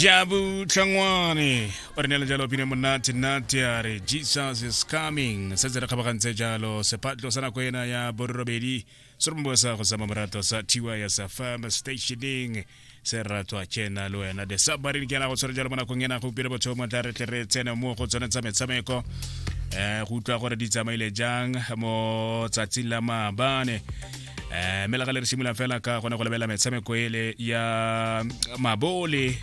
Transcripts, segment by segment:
jabu tlhangwane o re neela jalo pine monate nate a re jesus is coming setse re kgabagantse jalo sephatlo sa nako ena ya borobedi se re mobosa go sama morato sa tiwa ya sa farm stationing se ratwa kena le wena the submarine ke yana go tshwere jalo mo nakong ena go upile botho mo tla re tle re tsene mo go tsone tsa metshameko um go utlwa gore di tsamaile jang mo tsatsing la maabane eh mme la re simolola fela ka gone go lebelela metshameko ele ya mabole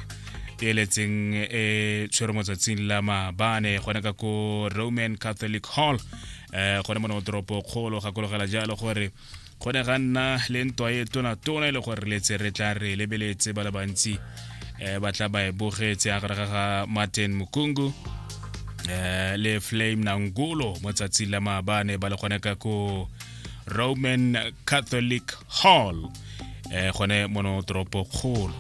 e letseng e tshwere mo tsatsing la maabane gone ka ko roman catholic hall um gone mo ne toropo kgolo gakologela jalo gore go ne ga nna le ntwa e tonatona e le gore letse re tla re lebeletse ba le bantsi um ba tla ba e bogetse a gare ga ga martin mokungu um le flame nangulo mo tsatsing la maabane ba le gone ka ko roman catholic hall eh gone mono toropo kgolo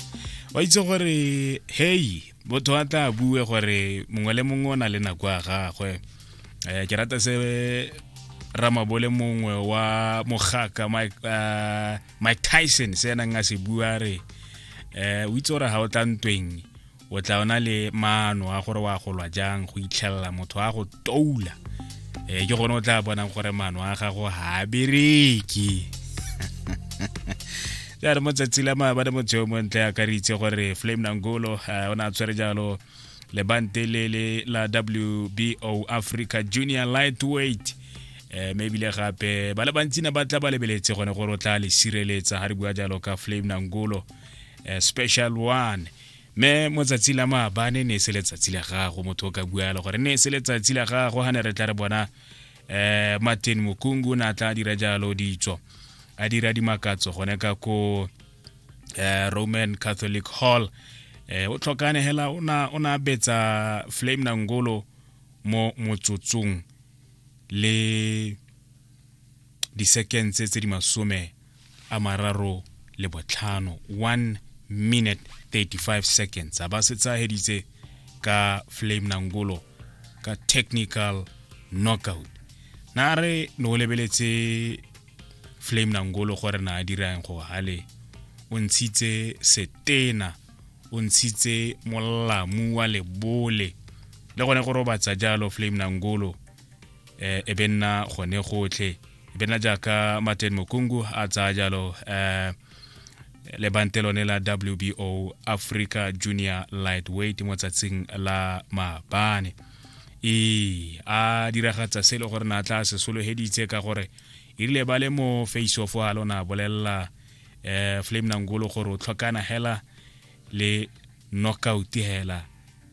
wa itse gore hei motho a tla bue gore mongwe le mongwe o na le nako ya gagwe um ke rata se ramabole mongwe wa mogaka mike eh, tyson se enang a se bua re um o itse gore ga o tla ntweng o tla ona le maano a gore wa golwa jang go itlhelela motho a go toula um ke gone o tla bonang gore maano a gago ga a bereke jare mo tsatsi la maabane motho yo montle a ka re itse gore flame nangolo eh, o ne a tshwere jalo lebante le le la wbo africa junior lightweight um mme ebile gape ba le bantsi ne ba tla ba lebeletse gone gore o tla le sireletsa ga re bua jalo ka flame nangolo eh, special one me mo tsatsi la maabane ne e se letsatsi la gago motho o ka bualo gore ne e se letsatsi la gago ga ne re tla re bona um martin mokungu ne a tla dira jalo ditso a dira dimakatso gone ka ko um roman catholic hall um o tlhokane hela o na betsa flame nangolo mo motsotsong le disekense tse di masome a mararo le botlhano 1 minute 35 seconds a ba se tsageditse ka flame nangolo ka technical knockout na re ne o lebeletse flame nangolo gore na a dirang go gale o ntshitse setena o ntshitse molamu wa lebole le gone go robatsa jalo flame nangolo um e be nna gone gotlhe e be nna jaaka martin mokungu a tsaya jalo um lebante lone la wbo africa junior lightweight mo tsatsing la maabane ee a diragatsa se e le gore na tla se sologeditse ka gore e rile ba le mo face off a lona bolelela um flame nangolo gore o tlhokana hela le knockout hela